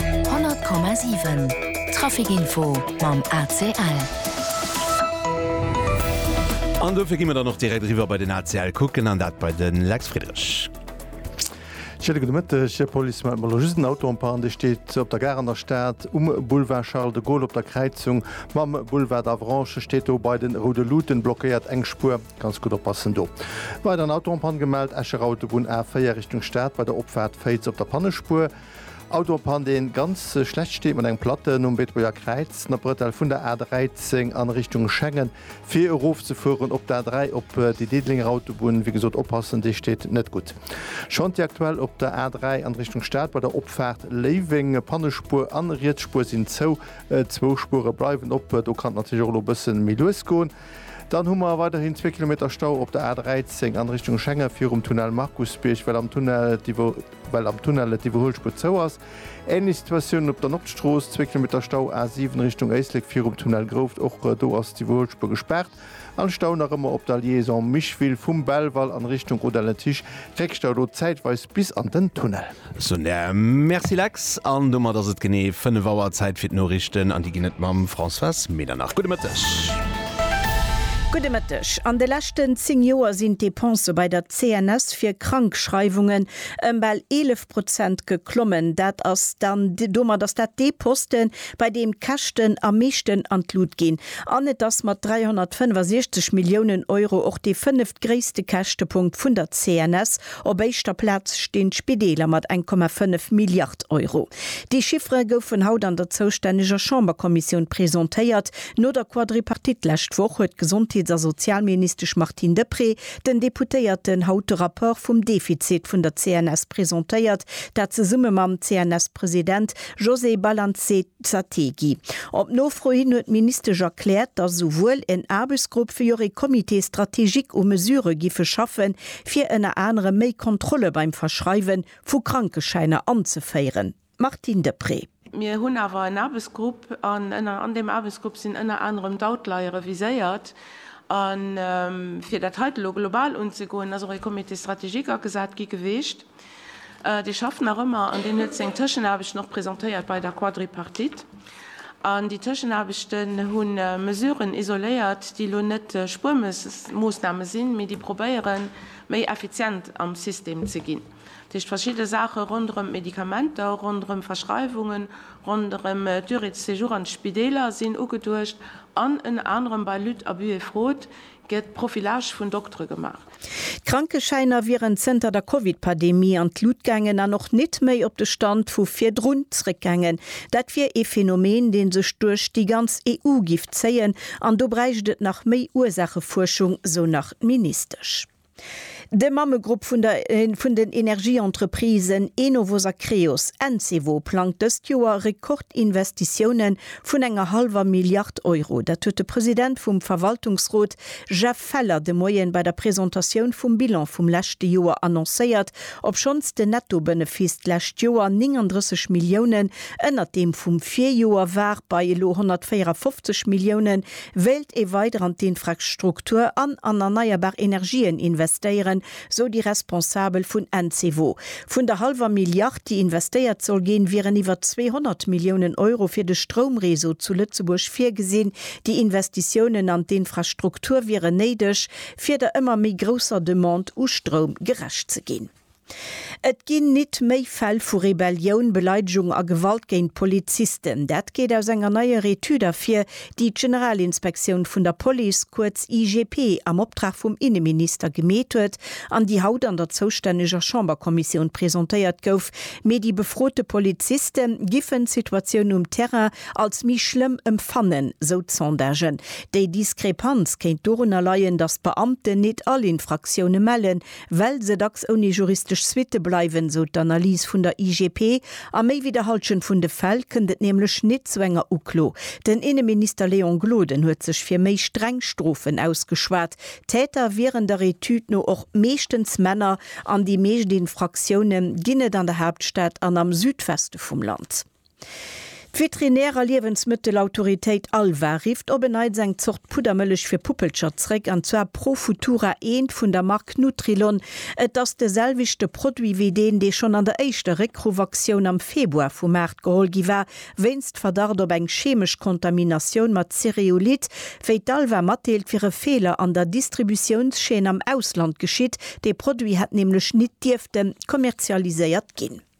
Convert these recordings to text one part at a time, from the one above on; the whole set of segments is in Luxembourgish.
100,7 Trafic Info mam ACL. An dofir gi mer dann och direkt eriwwer bei den ACL kucken, an dat bei de Lex Friedrich. Schéine gudde Mëtteg, Här Polis. Mir hate mer elo just en Auto en panne, dee steet op der Gare an der Stad um Boulevard Charles de Gaulle op der Kräizung mam Boulevard d'Avranches, steet do bei de Roude Luuten, blockéiert eng Spuer. Ganz gutt oppassen do. Weider en Auto en Panne gemellt, Escher Autobunn A4 Richtung Stad bei der Opfaart Féiz op der Pannespuer. Auto en Panne deen ganz schlecht steet mat engem Platten um Beetebuerger Kräiz no Bretel vun der A13 an Richtung Schengen fir erof ze fueren op d'A3 op déi Diddelénger Autobunn. Wéi gesot oppassen, déi steet net gutt. Chantier aktuell op der A3 an Richtung Stad bei der Opfaart Léiweng. Pannespuer an Rietsspuer sinn zou, zwou Spuere bleiwen op. Do kann et natierlech och elo bëssen méi lues goen. Dann hu mer weiderhin zwee Kilometer Stau op der A13 an Richtung Schengen virum Tunnel Markusbierg, well am Tunnel et well am Tunnel et Iwwerhuelspuer zou ass. Ähnlech Situatioun op der Nordstrooss, zwee Kilometer Stau A7 Richtung Éislek virum Tunnel Grouft, och do ass d'Iwwerhuelspuer gespaart. An Stau nach ëmmer op der Liaison Micheville vum Belval an Richtung Rodange-Tisch, Réckstau do zäitweis bis an den Tunnel. Sonja, Merci Lex. An domat ass et genee 5 Auer, Zäit fir d'Noriichten, an déi ginn et mam Françoise Medernach. Gudde Mëtteg. Gudde Mëtteg. An de leschten 10 Joer sinn d'Depensë bei der CNS fir Krankschreiwungen ëm bal 11 Prozent geklommen. Dat ass dann, domat ass dat dee Posten, bei deem d'Käschten am meeschten an d'Lut ginn. An et ass mat 365 Milliounen Euro och dee fënneft gréisste Käschtepunkt vun der CNS. Op éischter Plaz stinn d'Spideeler mat 1,5 Milliard Euro. Déi Chiffere goufen haut an der zoustänneger Chamberkommissioun presentéiert. No der Quadripartite lescht Woch huet d'Gesondheets a Sozialministesch Martine Deprez den Deputéierten haut de Rapport vum Defizit vun der CNS presentéiert, dat zesumme mam CNS-President Josée Balanzé. D'Sategi. Op Nofro hin huet d'Ministesch erkläert, datt esouwuel en Aarbechtsgrupp wéi och ee Comité stratégique u Mesurë giffe schaffen, fir ënner anerem méi Kontrolle beim Verschreiwe vu Krankeschäiner anzeféieren. D'Martine Deprez. Mir hunn awer en Aarbechtsgrupp an ënner an deem Aarbechtsgrupp sinn ënner anerem d'Outliere reviséiert. A fir dat heite lo global unzegoen, ass och ee Comité stratégique agesat gi geweecht. Dee schafft nach ëmmer an deen huet seng Tëschenaarbechten och presentéiert bei der Quadripartite. An déi Tëschenaarbechten hu Mesuren isoléiert, déi elo net Spuermoosname sinn, mee déi probéieren, méi effizient am System ze ginn. Dat heescht, verschidde Saache ronderëm d'Medikamenter, ronderëm Verschreiwungen, ronderëm d'Durée de séjour an d'Spideeler sinn ugeduecht, an ënner anerem bei Lutte, Abus et Fraude Gëtt Profilage vun Doktere gemaach? D'Krankeschäiner wieren zënter der Covid-Pademie an d'Lut gaangen an och nit méi op de Stand vu virdrun zréckgaangen. Dat wier ee Phänomen, dee sech duerch déi ganz EU giff zéien an do bräicht et nach méi Ursaachefuerschung, sou nach d'Ministesch. De Mammegrupp vun der vun den Energieentreprisen Enovos a Creos, Encevo, plangt dëst Joer Rekordinvestitioune vun enger hallwer Milliard Euro. Dat huet de President vum Verwaltungsrot Jeff Feller de Moien bei der Presentatioun vum Bilan vum leschte Joer annoncéiert, obschonns den Nettobënefiss d'lescht Joer 39 Milliounen ënnert deem vum Virjoer war, bei elo 154 Milliounen. Wéilt ee weider an d'Infrastruktur an an erneierbar Energien investéieren, sou déi Responsabel vun Encevo. Vun der hallwer Milliard, déi investéiert soll ginn, wieren iwwer 200 Milliounen Euro fir de Stroumreseau zu Lëtzebuerg virgesinn. Déi Investitiounen an d'Infrastruktur wieren néideg, fir der ëmmer méi grousser Demande u Stroum gerecht ze ginn. Et ginn nit méi Fäll vu Rebellioun, Beleidegung a Gewalt géint Polizisten. Dat geet aus enger neier Etüd ervir, déi d'Generalinspektioun vun der Police, kuerz IGP, am Optrag vum Inneminister gemeet huet an déi haut an der zoustänneger Chamberkommissioun presentéiert gouf. Mee déi befrote Poliziste giffen d'Situatioun um Terrain als méi schlëmm empfannen, sou d'Sondagen. Déi Diskrepanz kéint dorunner leien, datt d'Beamten nit all Infraktioune mellen, well se dacks ouni juristesch Suitte bleiwen, sou d'Analys vun der IGP. A méi wéi der Hallschent vun de Fäll kënnt et nämlech nit zu enger Uklo. Den Inneminister Léon Gloden huet sech fir méi streng Strofen ausgeschwat. Täter wieren der Etüd no och meeschtens Männer an déi meescht Infraktioune ginn et an der Haaptstad an am Südweste vum Land. D'Veterinär a Liewensmëttelautoritéit Alva rifft op e Neits eng Zort Puddermëllech fir Puppelcher zréck, an zwar Profutura eent vun der Mark Nutrilon. Et ass de selwechte Produit wéi deen, dee schonn an der éischter Réckruff-Aktioun am Februar vu Maart geholl gi war, wéinst Verdacht op eng cheemesch Kontaminatioun mat Cereulid, wéi d'Alva matdeelt, wier e Feeler an der Distributiounschaîne am Ausland geschitt. Dee Produit hätt nämlech nit dierfte kommerzialiséiert ginn.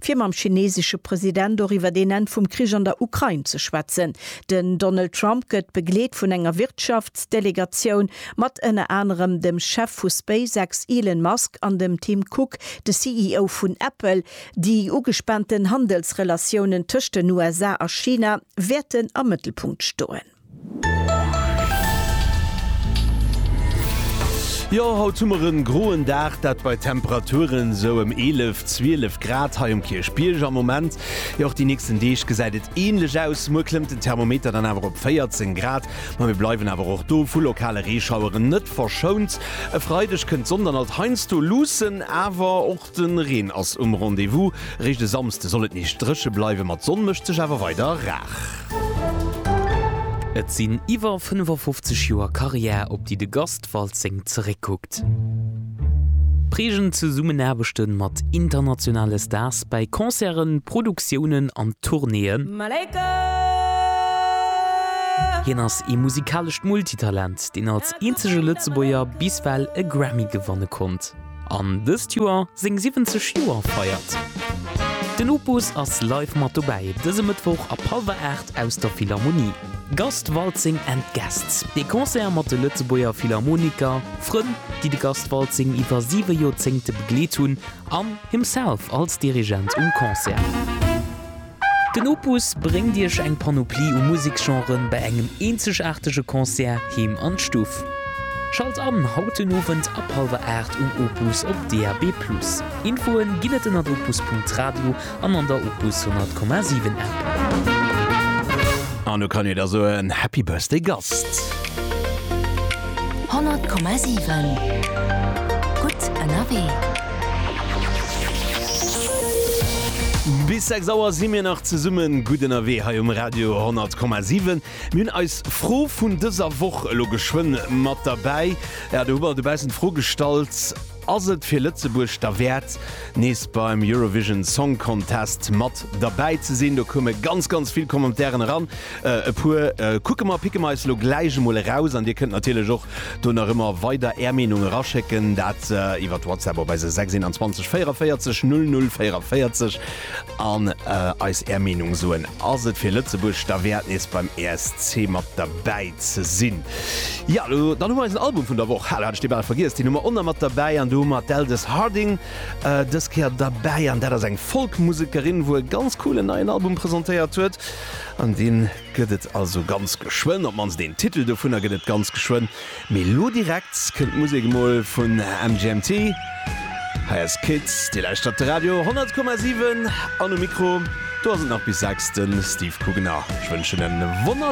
fir mam chinesesche President och iwwert een Enn vum Krich an der Ukrain ze schwätzen. Den Donald Trump gëtt begleet vun enger Wirtschaftsdelegatioun mat ënner anerem dem Chef vu SpaceX Elon Musk an dem Tim Cook, de CEO vun Apple. Déi ugespaanten Handelsrelatiounen tëscht den USA a China wäerten am Mëttelpunkt stoen. Jo, haut hu mer en groen Dag, dat bei Temperaturen sou em 11, 12 Grad hei um Kierchbierg am Moment. Jo, och déi nächsten Deeg gesäit et ähnlech aus. Muer klëmmt den Thermometer dann awer op 14 Grad, ma mir bleiwen awer och do vu lokale Reeschaueren net verschount. E Freideg kënnt d'Sonn dann alt heiansdo luussen, awer och. De Reen ass um Rendez-vous. Eréischt e Samsde soll et nees dréche bleiwen, ma d'Sonn mécht sech awer weider rar. Et sinn iwwer 55 Joer Karriär, op déi de Gast Waltzing zeréckkuckt. Prägend Zesummenaarbechte mat internationale Stars bäi Concerten, Produktiounen an Tournéeën. Hien ass ee musikalescht Multitalent, deen als eenzege Lëtzebuerger bis well e Grammy gewanne konnt. An dëst Joer seng 70 Joer feiert. Den Opus ass live mat dobäi dëse Mëttwoch ab hallwer 8 aus der Philharmonie. Gast Waltzing and Guests, ee Concert mat de Lëtzebuerger Philharmoniker, Frënn, déi de Gast Waltzing iwwer siwe Joerzéngte begleet hunn, an himself als Dirigent um Concert. Den Opus bréngt Iech eng Panoplie u Museksgenren bei engem eenzegaartege Concert heem an d'Stuff. Schalt an haut den Owend ab hallwer 8 um Opus op DAB+. Infoen ginn et ënnert opus.radio an an der Opus 100,7 App. An lo kann ee der soen, Happy Birthday Gast! 100,7 Gutt ënnerwee. Bis 6 Auer si mir nach zesummen gutt ënnerwee hei um Radio 10,7. Mir hunn eis Fro vun dëser Woch elo geschwënn mat derbäi. Jo, do hu mer dobaussen d'Fro gestallt, Ass et fir Lëtzebuerg derwäert, nees beim Eurovision Song Contest mat derbäi ze sinn? Do koume ganz, ganz vill Commentairen eran. E puer kucke mer, picke mer eis elo gläich emol eraus. An dir kënnt natierlech och do nach ëmmer weider är Meenung eraschécken, dat iwwert WhatsApp op eise 621 44 00 44 an eis är Meenung soen. Ass et fir Lëtzebuerg derwäert, nees beim ESC mat derbäi ze sinn? Jo, elo dann hu mer eisen Album vun der Woch. Hala, hat ech dee bal vergiess. Deen hu mer och nach mat derbäi. An do hu mer d'Aldous Harding dës Kéier derbäi. An dat ass eng Folk-Musekerin, wou e ganz coolen neien Album presentéiert huet. An dee gëtt et also ganz geschwënn, op d'mannst een Titel dovunner gëtt et ganz geschwënn. Mee elo direkt kënnt d'Musek emol vun MGMT. Hei ass Kids. Dir lauschtert de Radio 100,7 an um Mikro do ass et nach bis 6, de Steve Kugener. Ech wënschen en wonner.